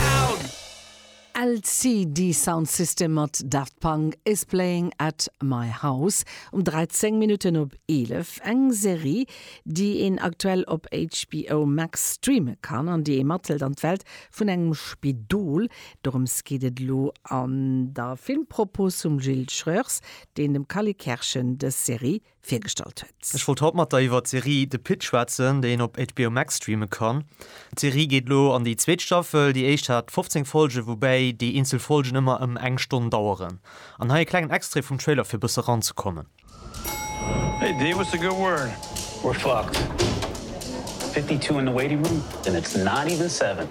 down. LCD Sound System mat Daft Punk is playing at my house um 13 Minutten op 11, eng Serie déi een aktuell op HBO Max streame kann an déi ee mathëlt an d'Welt vun engem Spidol. Dorëms geet et elo an der Filmpropos vum Gilles Schreurs, deen dem Kally Kerschen dës Serie virgestallt huet. Ech wollt haut mat der iwwert d'Serie The Pitt schwätzen, déi een op HBO Max streame kann. D'Serie geet elo an déi zweet Staffel. Déi éischt hat 15 Folgen, woubäi déi eenzel Folgen ëmmer ëm eng Stonn daueren. An hei e klengen Extrait vum Trailer fir bësse ran ze kommen. Hey Dave, what's the good word? We're fucked. Fifty two in the waiting room and it's not even seven.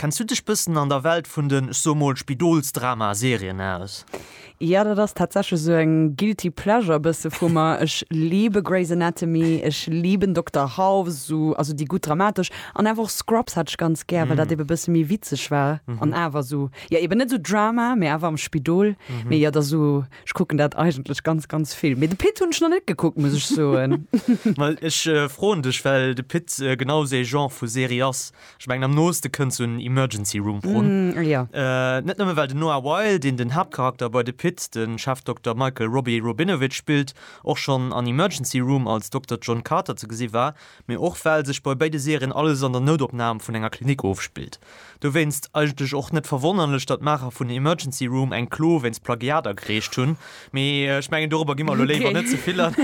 Kenns du dech bëssen an der Welt vun den, ech soe mol, Spidolsdrama-Serien aus? Jo, dat ass tatsächlech esou eng guilty pleasure bësse vu mer. Ech liebe Grey's Anatomy, ech liben Dokter House, esou, also déi gutt dramatesch. An awer och Scrubs hat ech ganz gär, well dat ebe bësse méi witzeg war an awer esou, jo eben net esou Drama, mee awer am Spidol. Mee jo, et ass esou, ech kucken dat eigentlech ganz, ganz vill. Mee de Pitt hunn ech nach net gekuckt, muss ech soen. Well ech froen dech, well de Pitt genau esou ee Genre vu Serie ass. Ech mengen am nooste kënnt sou en Emergency Room run. Mm, jo. Net nëmme well den Noah Wyle, deen den Haaptcharakter bei The Pitt, de Chefdokter Michael Robbie Robinovitch spillt, och schonn an Emergency Room als Dokter John Carter ze gesi war, mee och well sech bei béide Serien alles an der Noutopnam vun enger Klinik ofspillt. Dowéinst eigentlech och net verwonnerlech, datt d'Maacher vun Emergency Room eng Klo wéinst Plagiat agereecht hunn, mee ech mengen dorobber gi mer elo léiwer net ze vill an.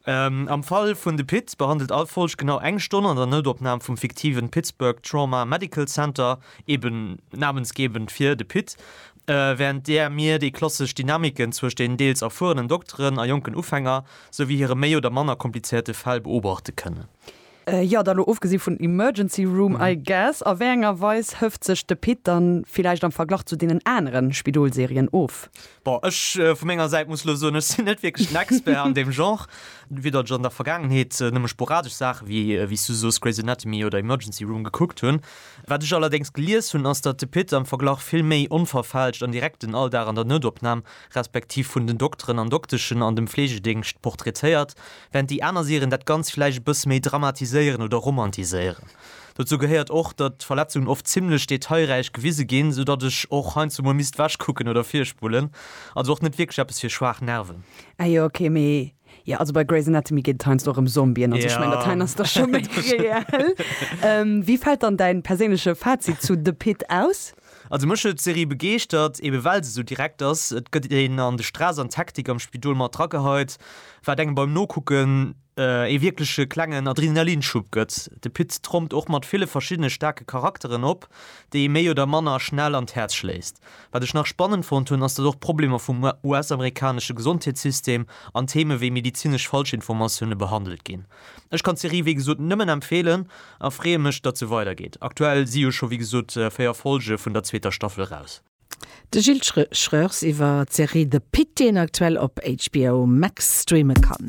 Am Fall vun de Pit behandelt all Folg genau eng Stonn an der Noutopnam vum fiktiven Pittsburgh Trauma Medical Center, eben namensgebend fir de Pit, während där mir déi klassesch Dynamiken zwëscht den deels erfuerenen Dokteren a jonken Ufänger, souwéi hire méi oder manner komplizéierte Fäll beobachte kënnen. Jo, da lo ofgesi vun Emergency Room, I guess. A wéi enger Weis hëft sech de Pit dann villäicht am Verglach zu deenen anere Spidol-Serien of? Bon, ech vu menger Säit muss lo soen, ech sinn net wierklech den Expert an deem Genre. Widder ech an der Vergaangenheet nëmme sporadesch Saache wéi, wéi s du soos, Grey's Anatomy oder Emergency Room gekuckt hunn. Wat ech allerdéngs gelies hunn, ass, datt de Pit am Verglach vill méi onverfälscht an direkt den Alldag an der Noutopnam respektiv vun den Dokteren an Dokteschen an dem Fleegedingscht portraitéiert, während déi aner Serien dat Ganzt vläicht e bësse méi dramatiséieren oder romantiséieren. Dozou gehéiert och, datt d'Verletzungen oft zimmlech detailräich gewise ginn, sou datt ech och heiansdo mol misst ewech kucken oder virspullen. Also och net wierklech eppes fir schwaach Nerven. Ah jo, ok, mee jo, also bei Grey's Anatomy geet et heiansdo och ëm Zombien an sou, ech mengen, dat heien ass da scho méi reell. Wéi fält dann däin perséinleche Fazit zu The Pitt aus? Also mech huet d'Serie begeeschtert, eben well se sou direkt ass. Et gëtt een an de Stress an d'Hektik am Spidol mat drageheit, wat engem beim Nokucken ee wierkleche klengen Adrenalinschub gëtt. De Pit trompt och mat ville verschiddene staarke Charakteren op, déi ee méi oder manner schnell an d'Häerz schléisst. Wat ech nach spannend fonnt hunn, ass datt och d'Problemer vum US-amerikanesche Gesondheetssystem an Theme wéi medezinesch Falschinformatioune behandelt ginn. Ech kann d'Serie wéi gesot nëmmen empfeelen a freeë mech datt se weidergeet. Aktuell si jo scho wéi gesot 4 Folge vun der zweeter Staffel raus. De Gilles Schreurs iwwer d'Serie The Pitt, déi een aktuell op HBO Max streame kann.